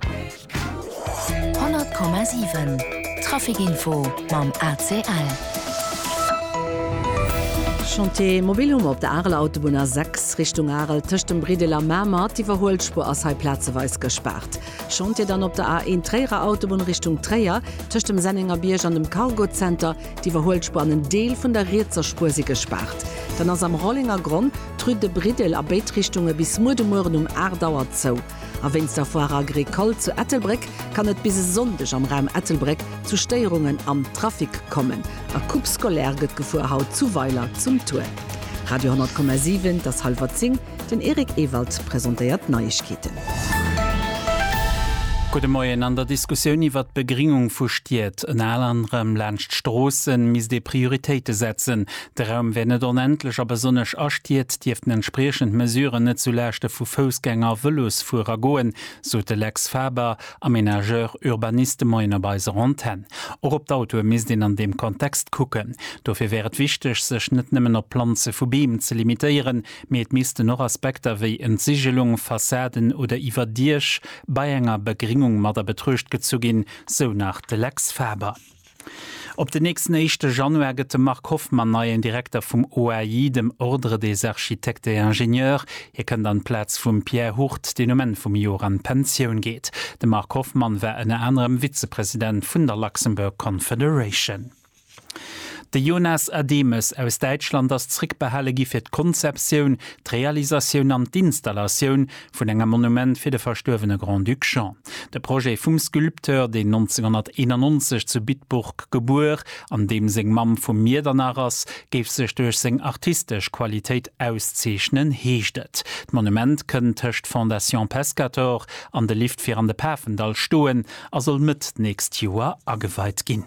100,7 Trafic Info mam ACL. Chantier mobil hu mer op der Areler Autobunn A6 Richtung Arel tëscht dem Briddel a Mamer. D'Iwwerhuelspuer ass hei plazeweis gespaart. Chantier dann op der A1 Tréierer Autobunn Richtung Tréier tëscht dem Sennengerbierg an dem Cargo Center. D'Iwwerhuelspuer an en Deel vun der rietser Spuer si gespaart. Dann ass am Rollengergronn d'Rue de Briddel a béid Richtunge bis muer de Mueren um 8 Auer zou. A wéinst der Foire Agricole zu Ettelbréck kann et bis e Sonndeg am Raum Ettelbréck zu Stéierungen am Trafic kommen. A Coupe scolaire gëtt gefuer haut zu Weiler zum Tour. Radio 10,7, et ass hallwer 10, den Eric Ewald presentéiert d'Neiegkeeten. Gudde Moien, An der Diskussioun iwwert d'Begringung vu Stied, ënner anerem laanscht Stroossen, misst ee Prioritéite setzen. De Raum wär net onendlech a besonnesch a Stied dierften entspriechend Mesuren net zu Laaschte vu Foussgänger a Vëlosfuerer goen, sot de Lex Faber, Aménageur, Urbaniste, Moien op eiser Antenn. Och op d'Autoe misst een an deem Kontext kucken. Dofir wär et wichteg, sech net nëmmen op d'Planze vu Beem ze limitéieren, mee et missten och Aspekter wéi Entsigelung, Fassaden oder Iwwerdiech bei enger Begringung mat a Betruecht gezu ginn, sou nach de Lex Faber. Op den nächsten éischte Januar gëtt de Marc Hoffmann neien Direkter vum OAI, dem Ordre des Architectes et Ingénieurs. Hie kënnt an d'Plaz vum Pierre Hurt, deen um Enn vum Joer an d'Pensioun geet. De Marc Hoffmann war ënner anerem Vizepresident vun der Luxembourg Confederation. De Jonas Ademes aus Däitschland ass zréckbehale gi fir d'Konzeptioun, d'Realisatioun an d'Installatioun vun enger Monument fir de verstuerwene Grand-Duc Jean. De Projet vum Sculpteur, deen 1991 zu Bitburg gebuer an deem seng Mamm vu Miedernach ass, géif sech duerch seng artistesch Qualitéit auszeechnen, heescht et. D'Monument kënnt tëscht Fondation Pescator an de Lift fir an de Pafendall stoen a soll Mëtt d'nächst Joer ageweit ginn.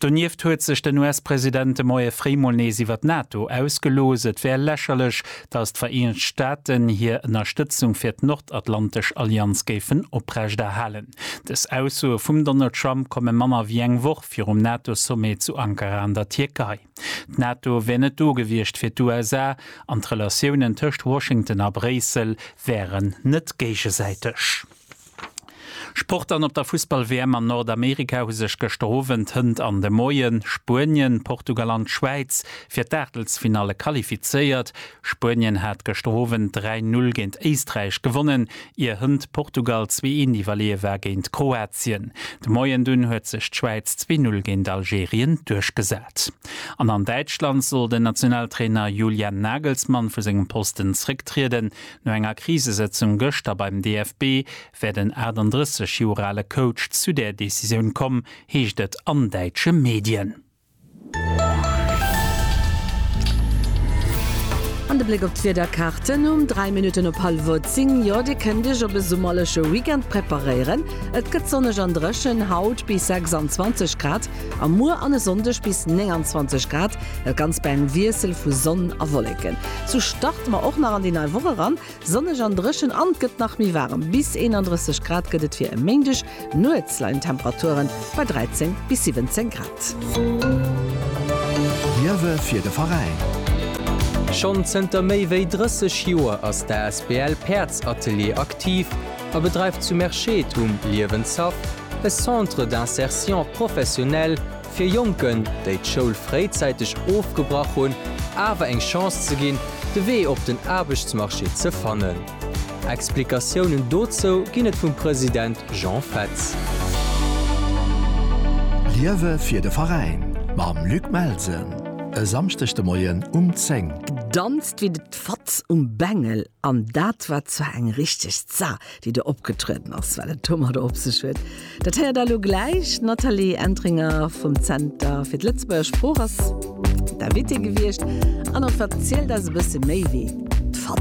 Donieft huet sech den US-President de Moie fréi mol nees iwwer d'NATO ausgelooss. Et wär lächerlech, datt d'Vereenegt Staaten hir Ënnerstëtzung fir d'Nordatlantesch Allianz géifen oprecht erhalen. Dës Aussoe vum Donald Trump komme manner wéi eng Woch virum NATO-Sommet zu Ankara an der Tierkei. D'NATO wär net do gewiescht fir d'USA an d'Relatiounen tëscht Washington a Bréissel wären net géigesäiteg. Sport an op der Fussball-WM an Nordamerika hu sech gëschter Owend, hënt an de Moien Spuenien, Portugal an d'Schwäiz fir d'Aachtelsfinalle qualifizéiert. Spuenien hat gëschter Owend 3, 0 géint Éisträich gewonnen, ier hënt Portugal zwee, eent iwwerleeë war géint Kroatien. De Moien dunn huet sech d'Schwäiz zwee, 0 géint Algerien duerchgesat. An an Däitschland soll den Nationaltrainer Julian Nagelsmann vu sengem Posten zrécktrieden. No enger Krisesëtzung gëschter beim DFB wär den 38 Joer ale Coach zu der Decisioun komm, heescht et an däitsche Medien. An de Bléck op d'Wiederkarte um 3 Minutten op hallwuert 10, Jo, Dir kënnt Iech op e summerleche Weekend preparéieren. Et gëtt sonneg an dréchen, haut bis 26 Grad a muer an e Sonndeg bis 29 Grad, dat Ganzt bei engem Wiessel vu Sonn a Wolleken. Sou starte mer och nach an déi nei Woch eran. Sonneg an dréchen an et gëtt nach méi waarem, bis 31 Grad gëtt et fir e Méindeg. Nuets leien d'Temperature bei 13 bis 17 Grad. Liewe fir de Veräin. Schonn zënter méi wéi 30 Joer ass d'asbl Päerdsatelier aktiv a bedreift zu Merschette um Liewenshaff e Centre d'insertion professionnelle Fir Jonken, déi d'Schoul fréizäiteg ofgebrach hunn, awer eng Chance ze ginn, de Wee op den Aarbechtsmarché ze fannen. Explikatiounen dozou ginn et vum President Jean Fetz. Liewe fir de Veräin mam Luc Melsen e Samschdeg de Moien um 10. Danzt wéi de Fatz um Bengel. An dat war zwar eng richteg Za, déi do opgetrueden ass, well et domadder op sech huet. Dat héiert elo gläich d'Nathalie Entringer vum Zenter fir d'Lëtzebuerger Sprooch ass d'Invitée gewiescht an erverzielt eis e bësse méi wéi d'Fanta.